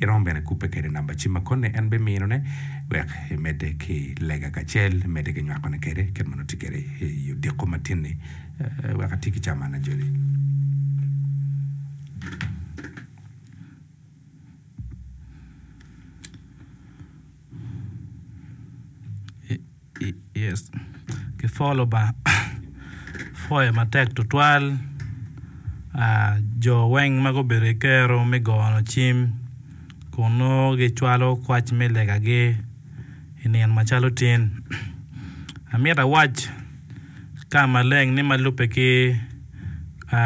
Iromo bene kubbe kede namba cim ma koni en biminone wek imedde ki lega kacel imedde ki nywakone kede kit ma nongo tye kede i odiko ma tin-ni wek ati ki caman ajoli. ki pwolo Lubanga pwoyo matek tutwal jo weng ma gubedo ki kero me goyo cim kun nongo gicwalo kwac me legagi i nino macalo tin amyero awac ka maleng ni ma lubbe ki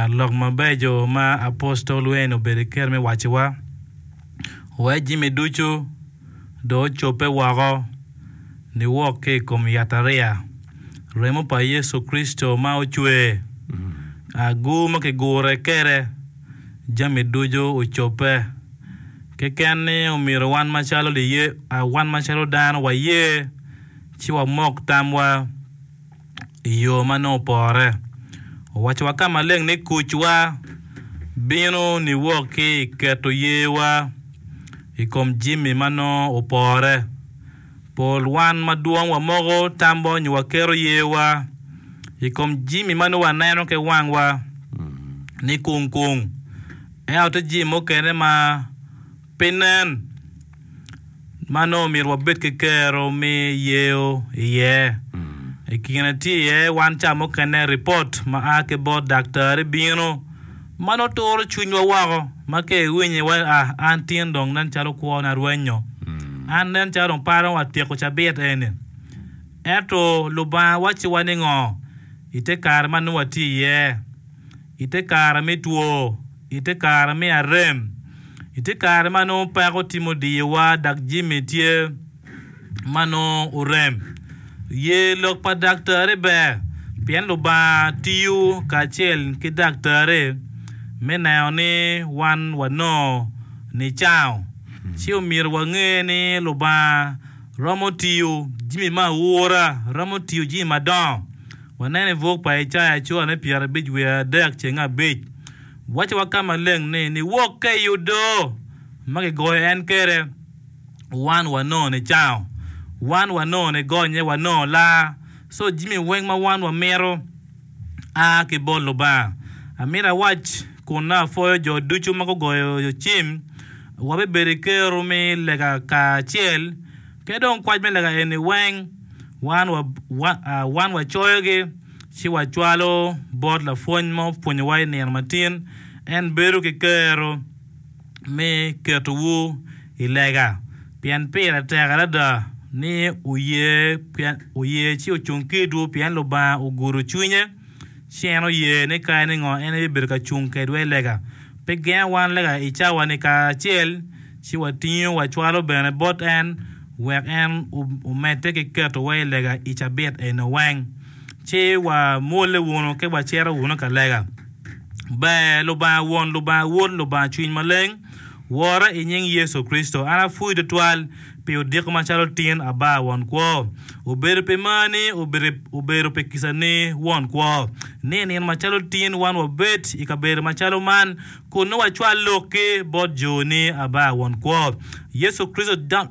lok mabeco ma apostol Wayne obedo ki kero me wacowa, Wa jami ducu. dong ocobbe woko niwok ki i kom yatariya, remo pa Yecu Kricito ma ocwer, agur ma kigure kwede, jami ducu ocobbe. Keken ni omyero wan macalo liye, wan macalo dano waye ci wamok tamwa. i yo ma nongo opore. Owacowa ka maleng ni kucwa bino niwok ki i keto yewa i kom jami ma nongo opore. Pol wan madwong wamoko tamwa nyo waketo yewa i kom jami ma nongo waneno ki wangwa ni kung kung. Ento tye jami mukene ma Pi nen ma nongo omyero wabed ki kero me yeyo iye, i kine tye iye wan ca mukene ripot ma a ki bot daktari bino ma nongo turo cwinywa woko ma ka iwinyo iwaco a an tin dong nen calo kwona rwenyo, an nen calo dong paro ni watyeko cabit eni. Ento Lubanga wacciwa ningo i te kare ma nongo watye iye i te kare me two? I te kare me arem, i te kare ma nongo peko tye mudiyowa dok jami tye ma nongo orem, ye lok pa daktari ber pien Lubanga tiyo kacel ki daktari me neno ni wan wanongo nicango. Ci omyero wange ni Lubanga romo tiyo jami me aura, romo tiyo jami madongo. Waneno i buk pa Icaya cura me pyerabic wiye adek ceng abic, waco wa ka maleng ni, Niwokke i odo ma gigoyo en kede, wan wanongo nicango, wan wanongo nigonye, wanongo laa, co jimi weng ma wan wamito a ki bot Lubanga. Amito awac kun apwoyo jo ducu ma gugoyo cim, wabibedo i ker-ru mi lega kacel Pe dong kwac me lega eni weng wan wa, wa, a, wan wacoyogi ci wacwalo bot lapwony ma opwonyowa i nino matin. En bedo ki kero me ketowu i lega, pien pire tek adada ni wuye, pien wuye ci ocung ki idwu, pien Lubanga ogudo cwinye. Ci en oye ni kare ningo en aye bibedo ka cung kedwa i lega, pe genga wan lega i cawa-ni kacel, ci watingo wacwalo bene bot en, wek en omedde ki ketowa i lega i cabit eno weng. Ci wamwolle wunu ki wacito wunu ka lega. Ber Lubanga Won, Lubanga Wod, Lubanga Cwiny Maleng, wora i nying Yecu Kricito, an apwoyi twatwal. pi odiko macalo tin aba won kwo, obedo pi mar ni obedo pi kica ni won kwo, ni i nino macalo tin wan wabed i kabedo macalo man kun nongo wacwal lok ki bot jo ni aba won kwo. Yecu Kricito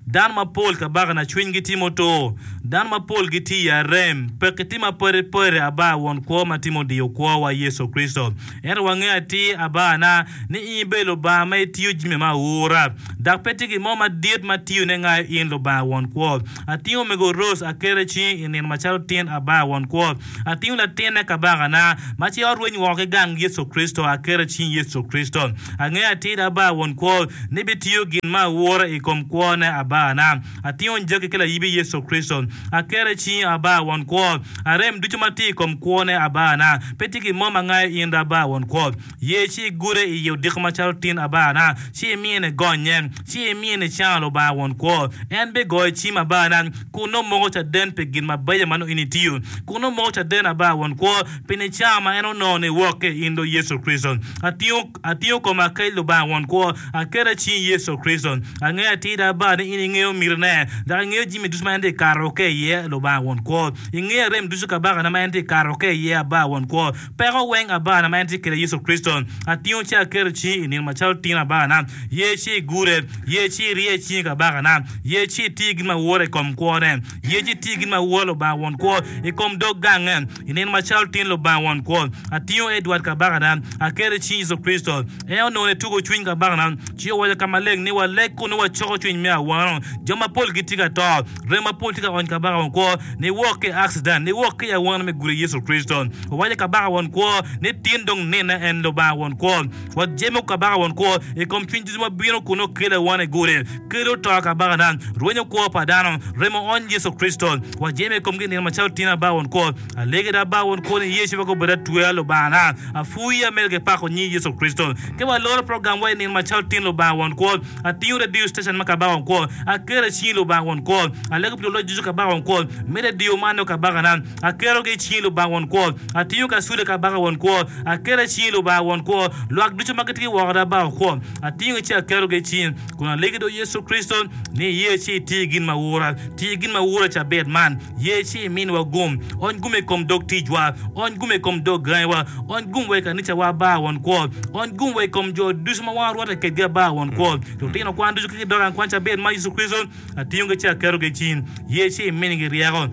Dano mapol kabaka na cwiny gi tye mutur, dano mapol gi tye i arem, pekki tye mapadi padi aba won kwo ma tye mudiyo kwo wa Yecu Kricito. Ento wangeyo atir abaana ni in ibedo Lubanga ma itiyo jami ma aura, dok pe tye gin mo madit ma tiyone ngayo in Lubanga won kwo. Atingo omego Rose aketo i cingi i nino macalo tin abaa won kwo. Atingo latinne kabakana ma ci ot rweny woko ki gang Yecu Kricito aketo i cing Yecu Kricito. Angeyo atir abaa won kwo ni bitiyo gin ma aura i kom kwone abaana. Atingo njagi ki layibi Yecu Kricito. Aketo i cingi Aba, Won Kwo. Arem ducu ma tye i kom kwone Aba na. Pe tye gin mo ma ngayo in Aba, Won Kwo. Ye ci igude iye odiko macalo tin Aba na, ci imiye ni gonnye, ci imiye ni cano Lubanga Won Kwo. En bigoyo cim Aba na, kun nongo moko caden pi gin mabeco ma nongo in itiyo, kun nongo moko caden Aba, Won Kwo, pi nicama ma en onongo ni wok ki i in do Yecu Kricito. Atingo. Atingo koma ki Lubanga Won kwo, aketo i cing Yecu Kricito. Angeyo atir da Baa ni in ingeyo mitine, dok ingeyo jimi ducu ma en ti kato ki iye, Lubanga Won kwo. Ingeyo rem ducu kabakane ma en ti kato ki iye, Abaa Won kwo. Peko weng Abana ma en ti kede Yecu Kricito, atingo ci aketo i cingi i nino macalo tino Abana. Ye ci igure, ye ci irye i cingi kabakana, ye ci iti gin ma woro i kom kwone, ye ci iti gin ma woro Lubanga Won kwo i kom dog gange. I nino ma calo tin Lubanga Won Kwo, atingo Edward kabakana, aketo i cing Yecu Kricito. En onongo ni tugo cwiny kabakana, ci owaco ka maleng ni waleg kun nongo wacoko cwiny me awano. Jo mapol gitye ka to, rem mapol tye ka ony Kabaka Won Kwo, niwok ki i accident, niwok ki i awano me gudi Yecu Kricito. Owaco Kabaka Won Kwo ni tin dong nine en Lubanga Won Kwo. Wajemo Kabaka Won Kwo i kom cwiny ducu ma bino kun nongo kelo awano i gudi, kelo to kabakana, rwenyo kwo pa dano, remo ony Yecu Kricito. Wa jemo i komgi i nino macalo tin aba won kwo. Alege dok aba won kwo ni Yecu pe gubedo atwea Lubangana. Apwoyi ya medo ki pako nyi Yecu Kricito. Ka wa loro program wa i nino macalo tin Lubanga won kwo, atingo radio station ma Kabaka won kwo, aketo i cingi Lubanga won kwo. Alego pi luloc ducu Kabaka won kwo, me radio man nongo Kabakana, aketo gi i cingi Lubanga won kwo. Atingo kacude Kabaka won kwo, aketo i cingi Lubanga won kwo. Lwak ducu ma gitye ki woko da aba won kwo, atingo gi ci aketo gi i cingi. Kun alegi do Yecu Kricito ni iye ci iti gin ma wura, ti gin ma wura cabit man, ye ci iminwa gum, ony gum i kom dog ticwa, ony gum i kom dog gangiwa, ony gum wa i kanicawa ba won kwo, ony gum wa i kom jo ducu ma wan orwatte kedgi aba won kwo, lutino kwan ducu ki dog an kwan cabit man Yecu Kricito, Atingogi ci aketogi i cing, ye ci iminigi ryeko.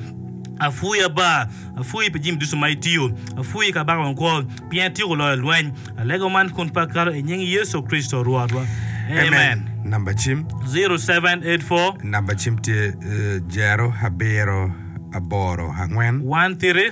Apwoyi Aba, apwoyi pi jami ducu ma itiyo, apwoyi kabaka wa kwo, pien ityeko loyo lweny. Alego man kun pe akato i nying Yecu Kricito Rwotwa. Amen. Namba cim. 0784. Namba cim tye 0 abiro aboro angwen. 13.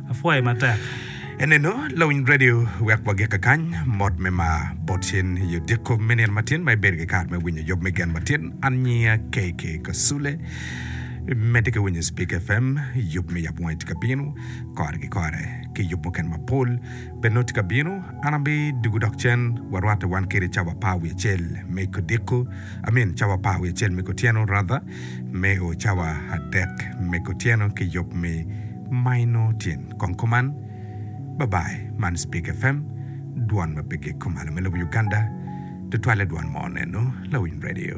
Apwoye matek. Enenu lawiny radio wek wagikke kany. Mot me mar bot cen i odiko me nino matin ma ibedo ki kare me winyo yub me gen matin. An nyinga KK Kasule. Imedde ki winyo Speaker FM. Yub me yabo wangi tye ka bino kore ki kore. Ki yub mukene mapol bene nongo tye ka bino. An abidugu dok cen warwatte wan kede cawa apar wiye acel me kodiko, I mean cawa apar wiye acel me kotyeno rather, me o cawa adek me kotyeno ki yub me Maino tyen kong kuman. Bye bye man speak FM dwon ma pe gek kumalo me lobo Uganda tutwale dwon mo neno lawiny radio.